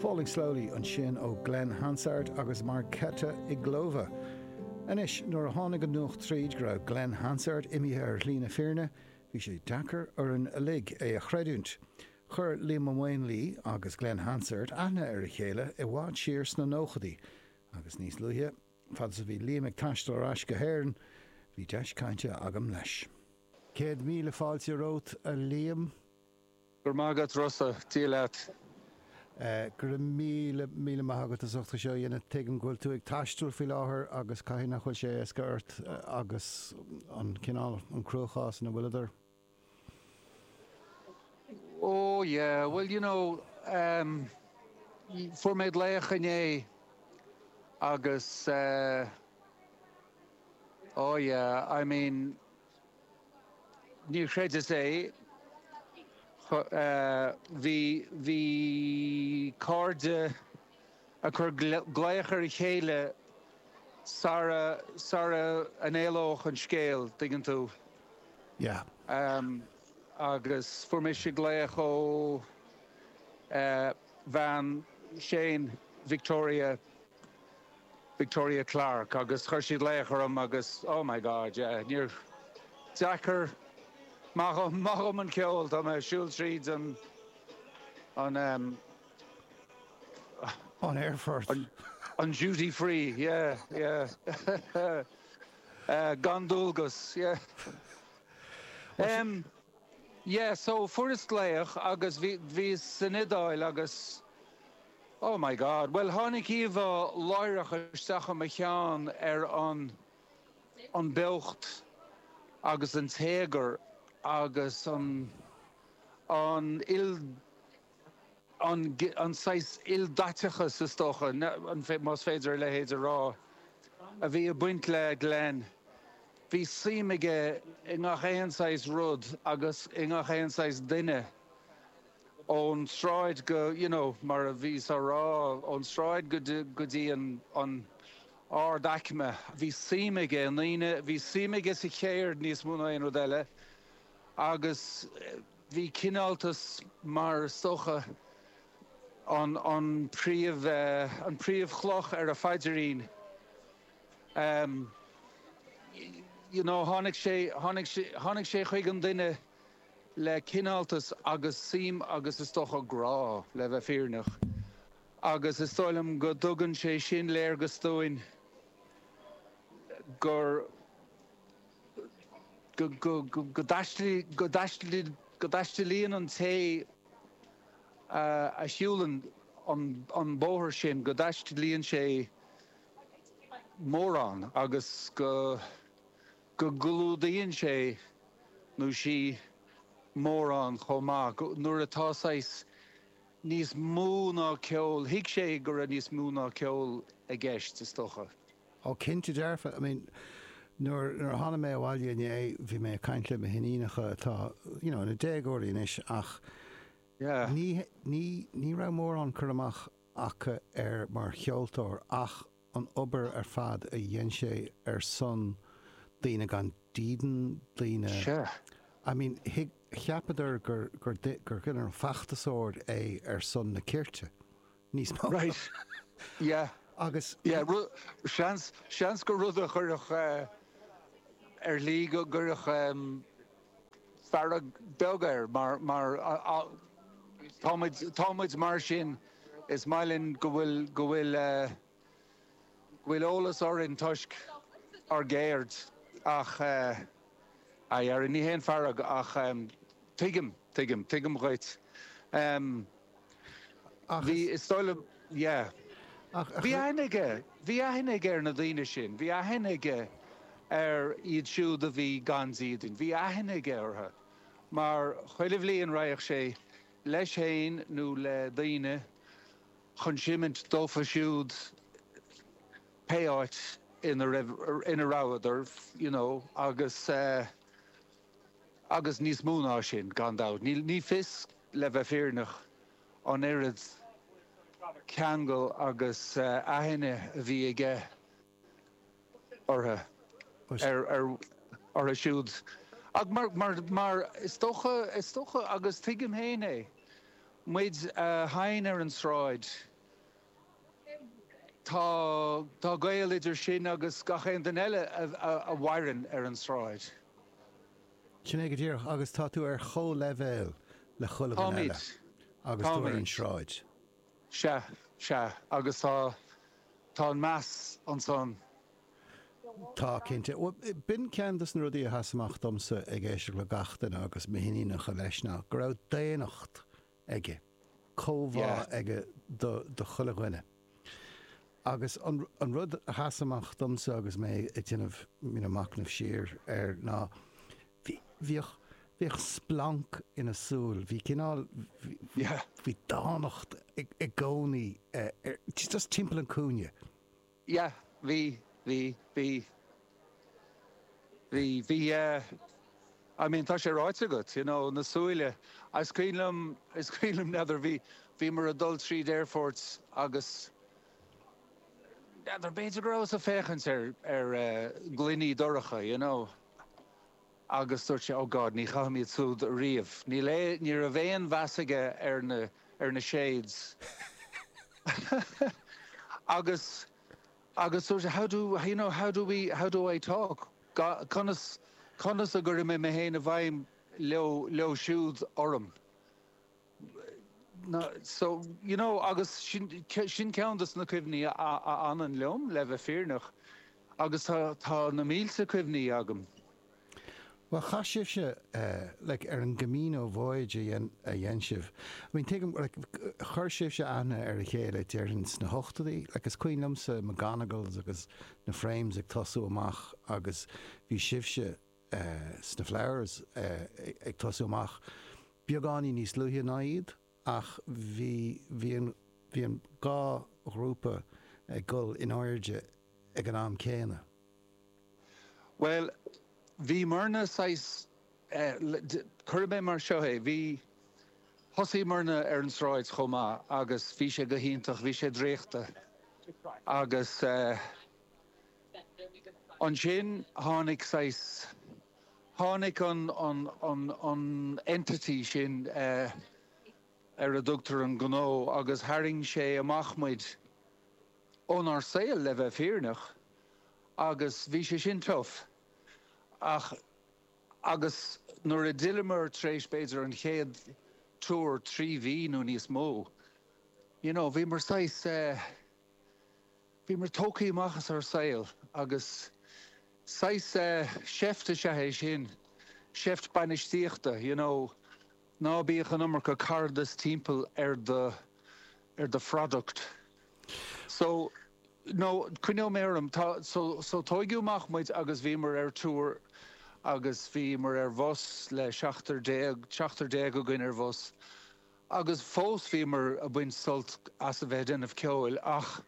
Falling Slowly ansin ó Glen Hansard agus Marketa Irglová. Anois, nuair a tháinig an nuacht tríd go raibh Glen Hansard imithe ar shlí na fírinne, bhí sé deacair orainn uilig é a chreidiúint. Chuir Liam Ó Maonlaí agus Glen Hansard aithne ar a chéile i bhfad siar sna nóchaidí, agus níos luaithe, fad is a bhí Liam ag taisteal ar ais go hÉirinn, bhí deis cainte agam leis. Céad míle fáilte romhat, a Liam. Go raibh maith agat Rossa, Dia leat. Go raibh míle, míle maith agat as ucht é seo a dhéanamh. Tuigim go bhfuil tú ag taisteal faoi láthair agus caithfidh nach bhfuil sé éasca ort agus an cineál, an cruachás ina bhfuileadar. Oh yeah, bhuel you know, em, fuair mé glaoch inné agus eh, oh yeah, I mean, Níor chreideas é. Bhí, bhí cairde ag cur glaoch ar a chéile sara, sara an éalódh an scéal, dtuigeann tú. Yeah. Agus fuair mise glaoch ó bhean Shane, Victoria, Victoria Clarke agus chuir siad glaoch orm agus oh my God yeah, ní, deacair, maith dhom, maith dhom an ceol, tá mé a' siúl tríd an, an ehm, ah, an aerfort, an, an duty free, yeah, yeah, eh, gan dualgas, yeah, ehm, yeah, so fuaireas glaoch agus bhí, bhíos san Iodáil agus. Oh my God. Bhuel, tháinig íomhá láithreach isteach i mo cheann ar an an beocht agus an téagar agus an an an an saghas ildaiteachas, is dócha, más féidir a leithéid a rá, a bhí ag baint le Glen. Bhí suim aige i ngach aon saghas rud agus i ngach aon saghas duine. ón tsráid go, you know, mar a bhíos á rá, ón tsráid go dtí, go dtí an, an, ard aicme. Bhí suim aige i ndaoine, bhí suim aige sa cheird níos mó ná aon rud eile agus bhí cineáltas mar is dócha an, an príomh eh, an príomh chloch ar a phaidirín ehm, you know, tháinig sé, tháinig sé, tháinig sé chuig an duine le cineáltas agus suim agus is dócha grá, le bheith fírinneach, agus is dóigh liom go dtugann sé sin léargas dúinn gur, go dtaistealaíonn an té a shiúlann an bóthar sin, go dtaistealaíonn sé mórán agus go. go gclúdaíonn sé nó sí mórán chomh maith, go, nuair atá saghas níos mó ná ceol, thuig sé go raibh níos mó ná ceol i gceist, is dócha. Ó, cinnte dearfa. I mean, nuair a tháinig mé abhaile inné, bhí mé ag caint le mo hiníonacha atá, you know, ina ndéagóirí anois, ach Yeah. ní, ní, ní raibh mórán cur amach acu air mar cheoltóir ach, an obair ar fad a dhein sé ar son daoine gan dídean, daoine, Sure. I mean, thuig, cheapadar gur, gur, gur, you know, feachtasóir é ar son na cirte, níos mó. Right. Yeah. Agus. Yeah, ru, seans, seans gur rud a chuirfeadh eh, ar shlí go gcuirfeadh em. fearg bheag air mar, mar a, tá muid, tá muid mar sin, is maith linn go bhfuil, go bhfuil, go bhfuil eolas orainn toisc ár gceirde ach eh, i ndáiríre, ní haon fearg ach em, tuigim, tuigim, tuigim dhuit. Em. Ach is. Bhí, is dóigh liom, yeah. Ach, ach. Bhí aithne aige, bhí aithne aige ar na daoine sin, bhí aithne aige ar iad siúd a bhí gan dídean, bhí aithne aige orthu mar chuile bhliain raghadh sé leis féin nó le daoine chun seinnt dófa siúd pé áit ina raibh, ina rabhadar, you know, agus eh, Agus níos mó ná sin, gan dabht. Ní fios, le bheith fírinneach, an oiread ceangal agus aithne a bhí aige orthu, orthu siúd. Ach mar is dócha, is dócha, agus tuigim féin é, muid a sheinn ar an tsráid, Tá tá gaol idir sin agus gach aon duine eile a mhaireann ar an sráid. Sin é go díreach, agus tá tú ar chomhleibhéal le chuile dhuine eile Táimid. agus tú ar an Táimid. sráid. Sea, sea, agus tá tá an meas ansan. Tá, cinnte. B'in ceann de na rudaí a sheas amach domsa ag éisteacht le gach duine agus m'iníonacha leis, ná go raibh daonnacht aige. Comhbhá aige do chuile dhuine. Agus an rud a sheas amach domsa agus mé ag déanamh you know macnamh siar air ná bhí, bhíodh, bhíodh splanc ina shúil. Bhí cineál, bhí dánacht i gcónaí just timpeall an cúinne. yeah bhí bhí bhí bhí bhí yeah I mean tá sé ráite agat you know na súile is cuimhin liom is cuimhin liom n'fheadar bhí bhíomar a' dul tríd aerfort agus n'fheadar b'fhéidir go rabhas a' féachaint ar ar eh gloiní dorcha you know. Agus dúirt sé, Oh God, ní chaithim iad súd riamh. Níl aon, ní raibh aon mheas aige ar na, ar na shades. Agus, agus dúirt sé, How do, you know, how do we, how do I talk? Ga, conas, conas a chuirfidh mé mé féin i bhfeidhm leo, leo siúd orm? na, so, you know, agus sin, sin ceann de na cuimhní a fhanann liom, le bheith fírinneach, agus tá, tá na mílte cuimhní agam. Bhuel, chaith sibhse, like, ar an gCamino voyage a dhein sibh, I mean, tuigim, like, chuir sibhse aithne ar a chéile, déarfainn, sna hochtóidí, like, is cuimhin liomsa McGonagalls agus na Frames ag tosú amach agus bhí sibhse, sna Flowers ag tosú amach beagáinín níos luaithe ná iad ach bhí bhí an dhá ghrúpa ag dul in airde ag an am céanna. Bhuel, bhíomarna saghas, cuirfidh mé mar seo é, bhí, thosaíomarna ar an sráid chomh maith agus bhí sé go hiontach, bhí sé draíochta agus. Ansin tháinig saghas, tháinig an, an, an, an entity sin ar a dtugtar an gnó agus tharraing sé amach muid ónár saol, le bheith fírinneach, agus bhí sé sin tough. Ach, agus nuair a d'fhilleamar tar éis b'fhéidir an chéad tour, trí mhí nó níos mó, you know, bhíomar saghas eh, Bhíomar tógtha amach as ár saol agus saghas seift is ea é sin, seift bainistíochta, you know, ná bíodh an iomarca caradas timpeall ar do, ar do phroduct. So, no, coinneoidh mé orm, tá, so, so tógadh amach muid agus bhíomar ar tour agus bhíomar ar bhus le seachtar déag, seachtar déag againn ar bhus, Agus fós bhíomar ag baint sult as a bheith ag déanamh ceoil ach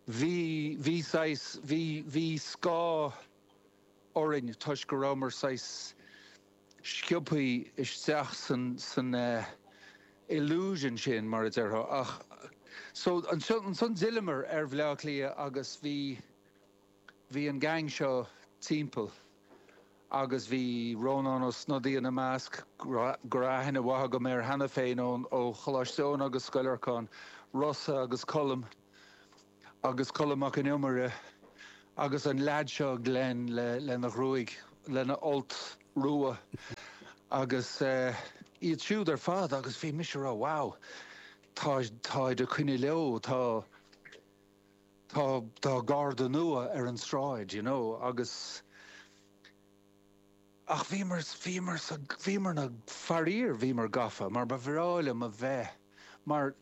bhí, bhí saghas, bhí, bhí scáth orainn toisc go rabhamar saghas sciobtha isteach san, san eh. illusion sin, mar a déarfá. Ach so, ansan d'fhilleamar ar Bhleá Cliath agus bhí. Bhí an gang seo timpeall agus bhí Rónán Ó Snodaigh ina measc, go raibh aithne mhaith agam air cheana féin ón Choláiste Eoin agus Scoil Lorcáin Rossa agus Colm agus Colm Mac an Iomaire agus an lead seo Glen lena ghruaig, lena fholt rua agus iad siúd ar fad agus bhí mise ag rá wow táid ag coinne leo, tá. tá, tá Garda nua ar an tsráid, you know, agus, ach bhíomar, bhíomar a, bhíomar na, faraor, bhíomar gafa, mar ba bhreá liom a bheith, mar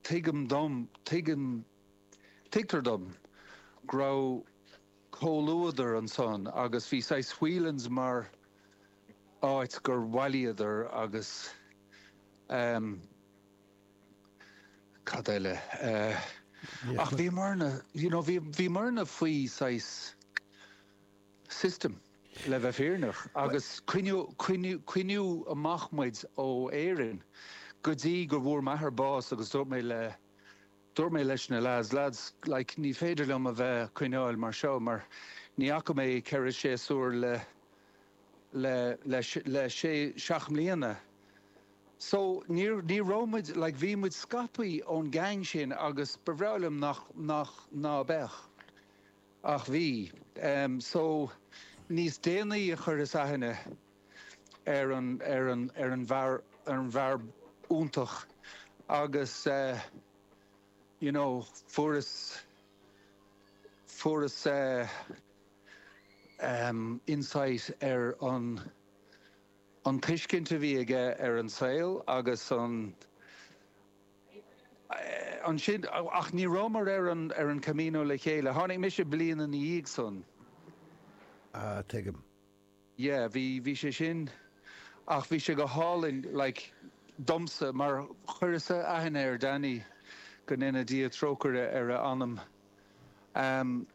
tuigim dom, tuigim, tuigtear dom go raibh comhluadar ansan agus bhí saghas Whelan's mar áit gur bhailíodar agus, eh, cad eile eh. ach bhíomarna you know bhí bhíomarna faoi saghas system le bheith fírinneach agus coinníodh coinníodh coinníodh amach muid ó Éirinn go dtí go bhfuair m'athair bás agus dúirt mé le dúirt mé leis na lads lads like ní féidir liom a bheith ag coinneáil mar seo mar ní fhaca mé ceithre séasúr le le sé seacht mbliana. So, níor, ní raibh muid, like, bhí muid scartha ón gceann sin agus ba bhreá liom nach, nach, ná beadh. Ach bhí. So, níos déanaí a chuireas aithne ar an, ar an, ar an bhfear, ar an bhfear iontach agus, you know, fuaireas, fuaireas, insight ar an an tuiscint a bhí aige ar an saol agus an ansin ach ní rabhamar ar an ar an Camino le chéile. Tháinig mise bliain ina dhiaidh san. Á tuigim. Yeah, bhí, bhí sé sin. Ach bhí sé go hálainn, like, domsa, mar chuireas-sa aithne ar Danny, go ndéana Dia trócaire ar a anam. Ehm,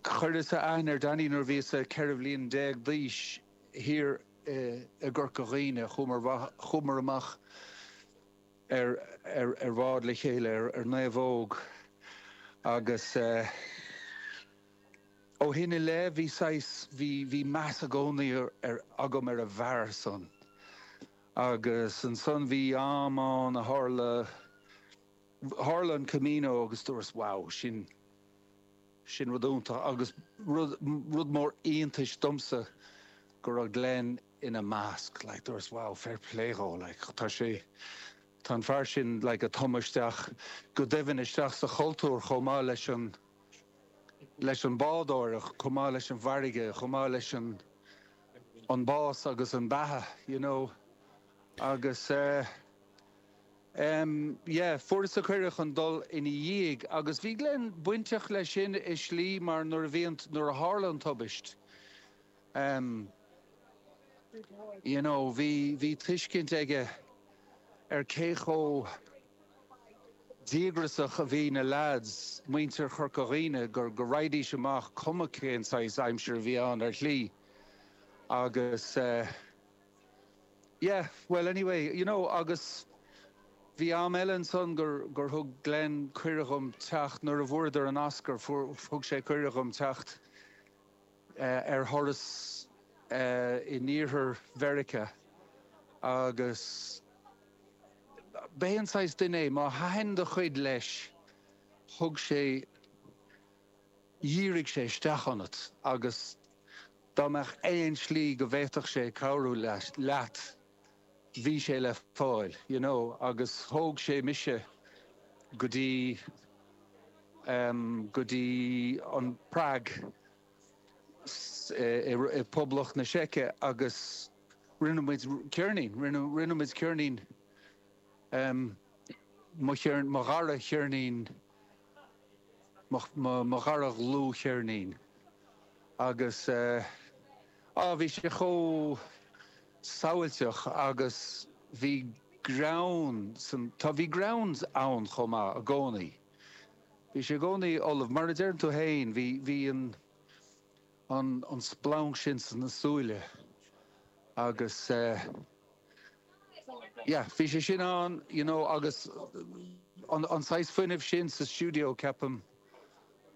chuireas-sa aithne ar Danny nuair a bhíos-sa ceithre bhliain déag d'aois, thiar i, i gCorca Dhuibhne. Chuamar amha-, chuamar amach ar, ar, ar bhád le chéile, ar, ar naomhóg, agus eh, Ó shin i leith bhí saghas, bhí, bhí meas i gcónaí ar, agam ar an bhfear san. Agus ansan bhí am ann a tharla, tharla an Camino agus dúras wow, sin, sin rud iontach agus rud, rud mór iontais domsa go raibh Glen ina measc, like dúras wow fair play dhó like tá sé, tá an fear sin like a' tumadh isteach go doimhin isteach sa chultúr chomh maith leis an, leis an bádóireacht, chomh maith leis an bhfarraige, chomh maith leis an an bás agus an beatha, you know. Agus eh. em. yeah, fuaireas-sa cuireadh chun dul ina dhiaidh agus bhí Glen bainteach leis sin i slí mar nuair a bhí an, nuair a tharla an tubaist, em, you know, bhí, bhí tuiscint aige ar cé chomh. díograsach a bhí na leads, muintir Chorca Dhuibhne, go go raghaidís amach cuma cén saghas aimsir a bhí ann ar shlí agus eh yeah bhuel anyway you know agus bhí am eile ansan gur gur thug Glen cuireadh dhom teacht nuair a bhfuaireadar an Oscar fuair thug sé cuireadh dhom teacht ar thuras i dTuaisceart Mheiriceá agus b'é an saghas duine é, má thaitin do chuid leis, thug sé, dhírigh sé isteach ionat agus dá mbeadh aon slí go bhféadfadh sé cabhrú leat, bhí sé le fáil, you know, agus thóg sé mise go dtí, em, go dtí an Prág, i, i, i Poblacht na Seice agus rinne muid ceirnín, rinne, rinne muid ceirnín, em, mo cheirn, mo dhara cheirnín. mo dhara dhlúthcheirnín agus á bhí sé chomh sábháilteach agus bhí greann sa, tá bhí greann ann chomh maith i gcónaí bhí sé i gcónaí ullamh mar a deireann tú fhéin bhí bhí an. an splanc sin sna súile agus yeah bhí sé sin ann you know agus an saghas fuinnimh sin sa stiúideo ceapaim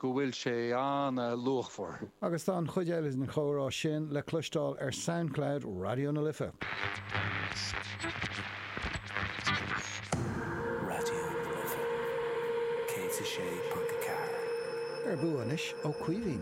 go bhfuil sé ana-luachmhar. Agus tá an chuid eile den chomhrá sin le cloisteáil ar Soundcloud Raidió na Life. Ar bua anois ó Caoimhín.